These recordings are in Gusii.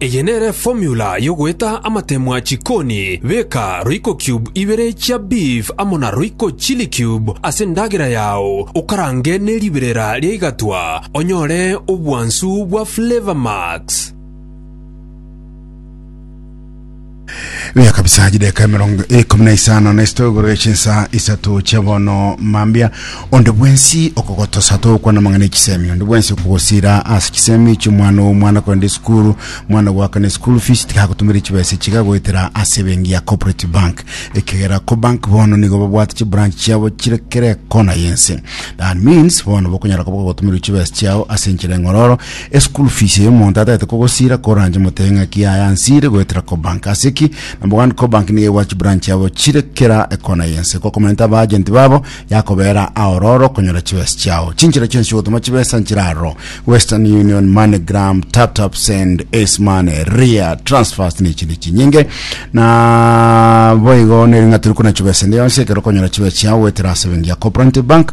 Eye nere formula yogoeta amatemwa chikoni, beka royco cube ibere chia beef amo na royco chili cube ase endagera yao okarange ne riberera ria igatwa onyore obwansu bwa flavor max. Biaka bisaha chideka emerongo ikomi na isano na isito igoro echinsa isato chia bono mambia onde bwensi okogotosa togokwana amang'ana echisemi onde bwensi okogosira ase chisemi chiomwana owo omwana kwenda esukuru mwana gwakana esukuru fees tigagotumire chibesa chiga goetera ase ebengi ya cooperative bank ekegera ko bank bono nigo babwate chibranch chiabo chire kere kona yense that means bono bokonyara koba gogotumirwa chibesa chiao ase enchera eng'ororo Eschool fees eye omonto atagete kogosira koranche motebe ng'aki yaye ansire goetera Cobank. Ase ki? Number one, Cobank nigo egwachi branch yabo chire kera ekona y'ense. Gokomenta aba agent babo yakobeera aororo okonyora chibesa chiao. Chinchera chionsi chi'ogotoma chibesa nchire aroro, Western Union, MoneyGram, TapTapSend, Ace Money, Ria, Transfast na echinde chinyinge. Na boigo nere ng'a tori kona chibesa ende yonsi ekero okonyora chibesa chiao goetera ase ebenki ya Cooperative Bank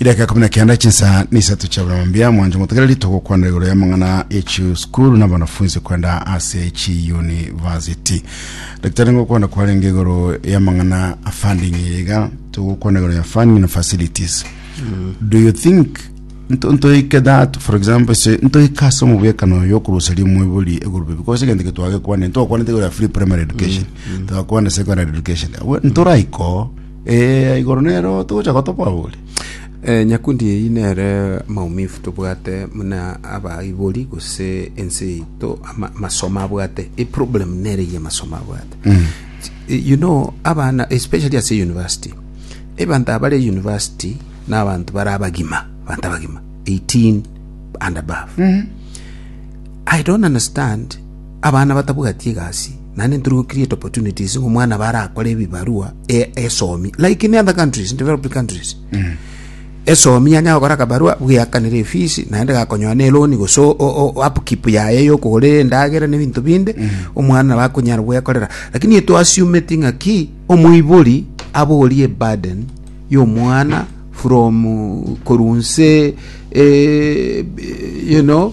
idaka kumi na kenda chinsa na isato chia buna mambia mwancho motegereri togokwana igoro ya mang'ana echi skuru na banafunzi kwenda ase chi university daktari ngokwana kwarenge igoro ya mang'ana a funding iga togokwana igoro ya funding na facilities do you think nto- ntoike that for example se ntoike ase omobwekano yokoruseria omwebori egurube because egento getwagekwane ntwakwanete igoro ya free primary education twakwana secondary education Awe- ntoraiko Ee, igoro nero togocha gotoboa bori. Eh, nyakundi eyio nere maumifu tobwate muna abaibori gose ense yaito ama- amasomo abwate eproblem nere eye amasomo abwate Eh, you know abana especially ase university ebanto abare university na abanto bare abagima abanto abagima 18 and above i don't understand Abana batabwati egasi, naende ntori go create opportunities ng'a omwana abe arakore ebibarua e- esomi like in other countries, in developed countries. Esomi yanya gokora akabarua bweakanire efees naende gakonyoa ne loan gose o- o- o- upkeep yaye yokogora endagera na ebinto binde omwana nabo akonyara bwekorera lakini eto assume-ti ng'a ki omoibori aborie burden y'omwana from korwa nse eh, you know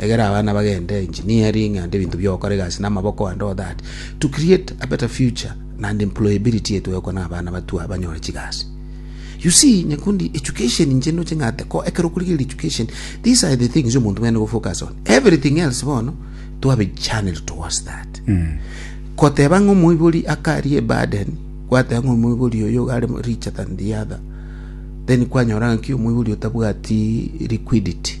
Egera abana bagende engineering and ebinto biogokora egasi namaboko and all that to create a better future and employability yetu egokwana abana batwa banyore chigasi. You see, nyakundi education inche ndoche ng'ate ko ekero okorigereria education these are the things omonto bwene gofocus on everything else bono to have a channel towards that koteba ng'a omoibori akarie burden gwateba ng'a omoibori oyo are richer than the other then kwanyora ng'aki omoibori otabwati liquidity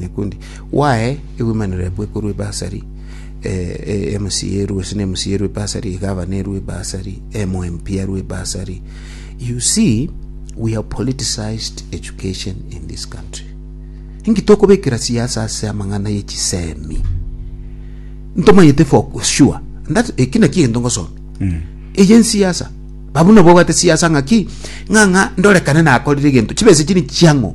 nyakundi, gwae egwemanero yaku ekorwa ebasari, emosiya erwe gose na emosiya erwe ebasari, egavana erwe ebasari, emo MP arwe ebasari. You see, we have politicized education in this country. Inki tokobekera siasa ase amang'ana ye chisemi? ntomanyete for sure And that eki naki egento ngosoma eye nsiasa babu nabo obwate siasa ng'aki ng'a ng'a ndorekane nakorire egento chibesa chiri chiang'o